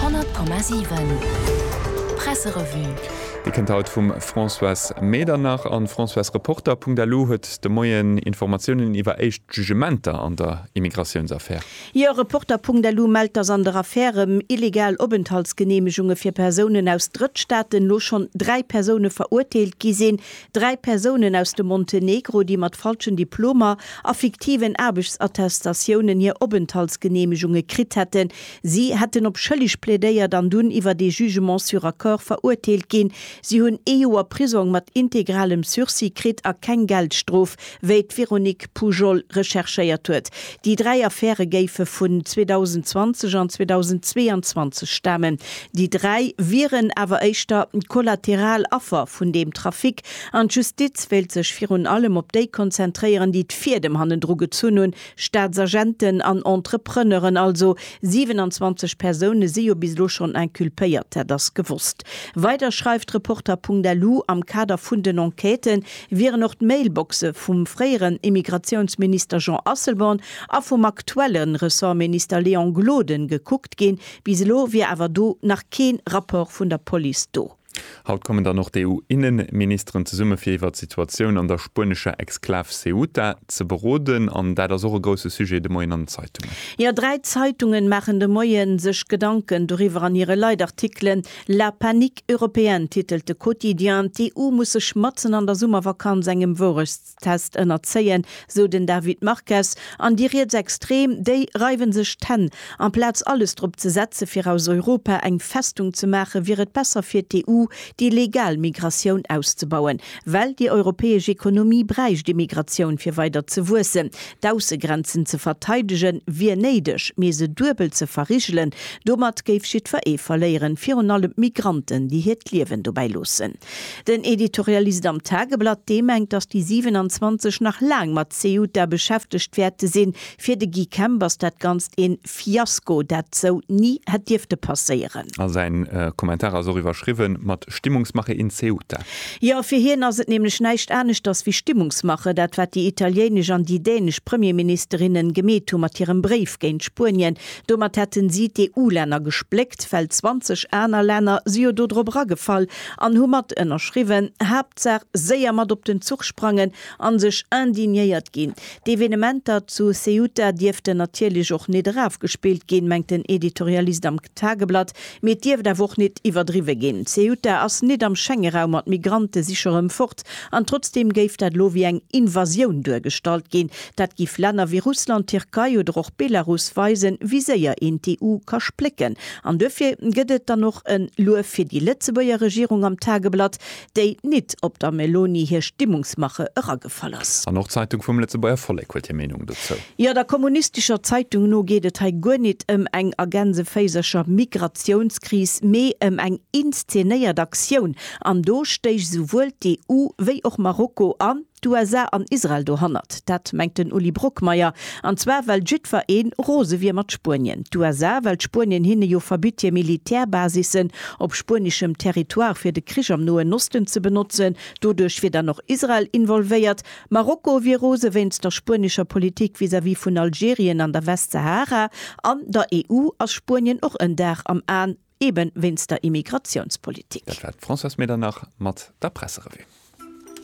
100,7 Presserevue. Dir kënnt haut vum Françoise Medernach an Françoise Reporter. Punkt elo huet de Moien Informatiounen iwwer éischt Jugementer an der Immigratiouns-Affär. Jo, Reporter Punkt elo mellt, dass an der Affär ëm illegal Openthaltsgeneemegunge fir Persounen aus Drëttstaaten elo schonn dräi Persoune verurteelt gi sinn. Dräi Persounen aus dem Montenegro, déi mat falschen Diplomer a fiktiven Aarbechtsattestatiounen hir Openthaltsgeneemegunge kritt hätten. Si hätten op schëlleg plädéiert an dunn iwwert ee Jugement sur accord verurteelt ginn. Si hunn ee Joer Prisong mat integralem Sursis kritt a keng Geldstrof. Wéi d'Véronique Pujol recherchéiert huet, déi dräi Affäre géife vun 2020 an 2022 stamen. Déi dräi wieren awer éischter kollateral Affer vun deem Trafic an d'Justiz wéilt sech virun allem op déi konzentréieren, déi d'Fiedem hannendru gezunn hunn, Staatsagenten an Entrepreneuren. Also 27 Persoune si jo bis elo schonn inculpéiert, dat ass gewosst. Weider schreift Reporter.lu, Am Kader vun den Enquêten wieren och d'Mailboxe vum fréieren Immigratiounsminister Jean Asselborn a vum aktuelle Ressortminister Léon Gloden gekuckt ginn. Bis elo wier awer do nach kee Rapport vun der Police do. Haut kommen dann och d'EU-Innenministeren zesumme fir iwwert d'Situatioun an der spuenescher Exklav Ceuta ze beroden. An dat ass och e grousse Sujet de Moien an den Zeitungen. Jo, dräi Zeitungen maachen de Moie sech Gedanken doriwwer an hire Leitartikelen. La panique européenne titelt de Quotidien, d'EU muss sech matzen an der Summervakanz engem Wourechtstest ënnerzéien, sou den David Marques. An déi Rietsextrem, déi reiwen sech d'Hänn. Amplaz alles drop ze setze fir aus Europa eng Festung ze maache wier et besser fir d'EU, déi legal Migratioun auszebauen. Well déi europäesch Ekonomie bräicht Immigratioun fir weider ze wuessen, D'Aussegrenzen ze verteidegen, wier néideg, mee se duebel ze verrigelen, domat géif jiddwer ee verléieren, virun allem d'Migranten, déi hiert Liewen dobäi loossen. Den Editorialist am Tageblatt, dee mengt, datt déi 27 nach laang mat Ceuta beschäftegt wäerte sinn. Fir de Guy Kemp ass dat Ganzt een Fiasko, dat sou ni hätt dierfte passéieren. A säin Kommentar ass och iwwerschriwwen mat Stimmungsmache in Ceuta. Jo, fir hien ass et nämlech näischt aneschters wéi Stimmungsmache, dat wat déi italienesch an déi dänesch Premierministerinnen gemeet hu mat hirem Bréif géint Spuenien. Domat hätten si d'EU-Länner gespléckt, well 20 aner Länner si jo do drop eragefall an hu mat ënnerschriwwen. Haaptsaach séier mat op den Zuch sprangen a sech indignéiert ginn. D'Evenementer zu Ceuta dierften natierlech och nit erafgespillt ginn, mengt den Editorialist am Tageblatt, mee et dierft awer och nit iwwerdriwwe ginn. Ceuta ass nit am Schengeraum an d'Migrante si scho rëm fort. An trotzdeem géif dat elo wéi eng Invasioun duergestallt ginn. Dat géif Länner wéi Russland, Tierkei oder och Belarus weisen, wéi séier een d'EU ka splécken. An duerfir gëtt et dann och en Luef fir déi Lëtzebuerger Regierung am Tageblatt, déi nit op der Meloni hir Stimmungsmache eragefall ass. An och d'Zeitung vum Lëtzebuerger Vollek huet hir Meenung dozou. Jo, der kommunistescher Zeitung no geet et hei guer nit ëm eng, a Gänseféisercher, Migratiounskris, mee ëm eng inszenéiert Aktioun. An do stéich esouwuel d'EU wéi och Marokko an. D'USA an Israel dohannert, dat mengt den Uli Brockmeyer. An zwar well jiddwer een rose wier mat Spuenien. D'USA, well Spuenien hinne jo verbitt hir Militär-Basissen op spuenischem Territoire fir de Krich am Noen Osten ze benotzen. Doduerch wier dann och Israel involvéiert. Marokko wier rose wéinst der spuenischer Politik vis-à-vis vun Algerien an der Westsahara. An der EU ass Spuenien och en Dar am Aen, eben wéinst der Immigratiounspolitik. Dat war d'Françoise Medernach mat der Presserevue.